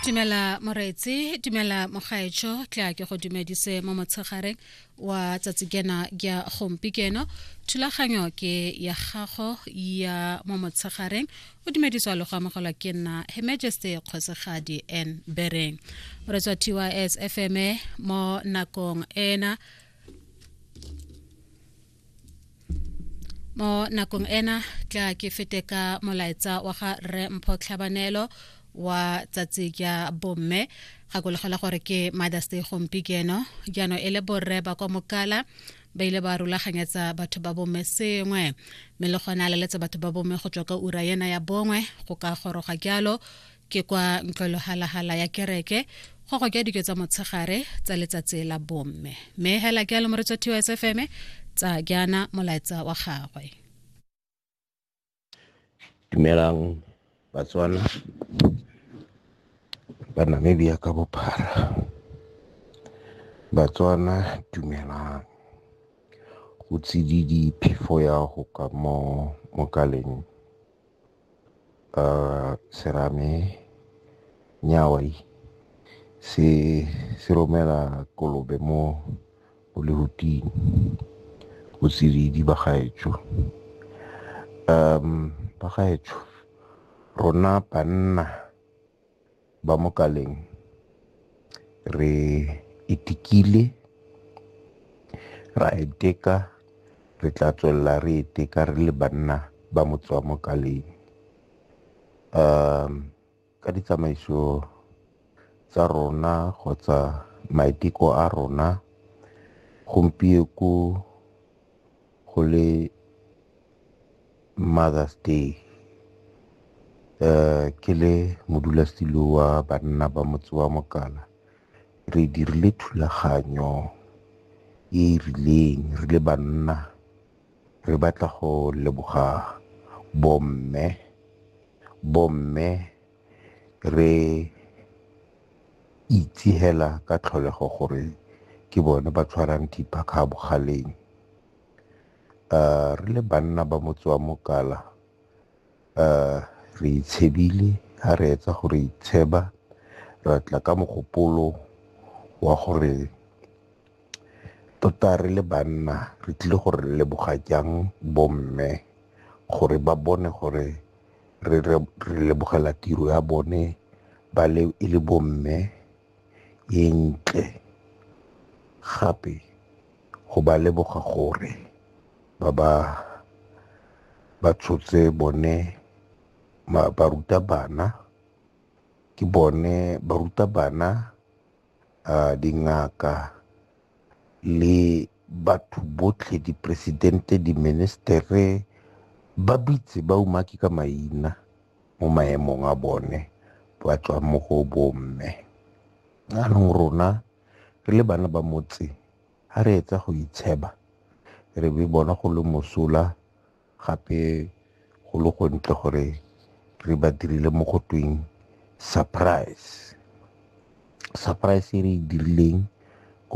dumela moreetsi dumela mogaetsho tla ke go dumedise mo motshegareng wa tsatsi kena ya gompi keno thulaganyo ke ya gago ya mo motshegareng o dumediswa le go amogelwa ke nna he majesty kgosegadi n bereng re tswa tys fm mo nakong ena mo nakong ena tla ke fete ka molaetsa wa ga rre mpho tlhabanelo wa tsatsi ja bomme gakologelwa gore ke mothers day gompi keno jaanong e le borre ba kwa mokala ba ile ba rulaganyetsa batho ba bomme sengwe mme le gone a leletse batho ba bomme go tswa ka ura ena ya bongwe go ka goroga jalo ke kwa ntlwelohalahala ya kereke go go ke dike tsa motshegare tsa letsatsi la bomme mme hela ke a lomoretso tiwa sfm tsa jaana molaetsa wa gagwe dumelang batswana ba namibia ka bophara batswana dumelang go tsididi phefo ya go ka mo mokaleng uh, serame nyawai se se romela kolobe mo o le huting o tsididi ba gaetsho um ba gaetsho rona banna ba mo kaleng re itikile ra iteka re tla tswelela re iteka re le banna ba motswa mo kaleng um ka ditsamaiso tsa rona kgotsa maiteko a rona gompieko go le Mother's Day. Ke le modulasetilo wa banna ba motse wa Mokana re dirile thulaganyo e e rileng re le banna re batla go leboga bomme. Bomme re itse hela ka tlholego gore ke bone ba tshwarang thipa kga bogaleng. Re le banna ba motse wa Mokala re itshebile ha re etsa gore itsheba ra tla ka mogopolo wa gore tota re le banna re tlile gore re leboga jang bomme gore ba bone gore re lebogela tiro ya bone ba le e le bomme e ntle gape go ba leboga gore ba ba ba tshotse bone baruta bana ke bone baruta bana uh, dingaka le batho botlhe dipresidente diministere ba bitse ba umaki ka maina mo maemong a bone ba tswa mo go bomme anong rona re le bana ba motse ga re etsa go itsheba re be bona go le mosola Gape go le go ntle gore re ba dirile mo go tweng surprise. Surprise e re e dirileng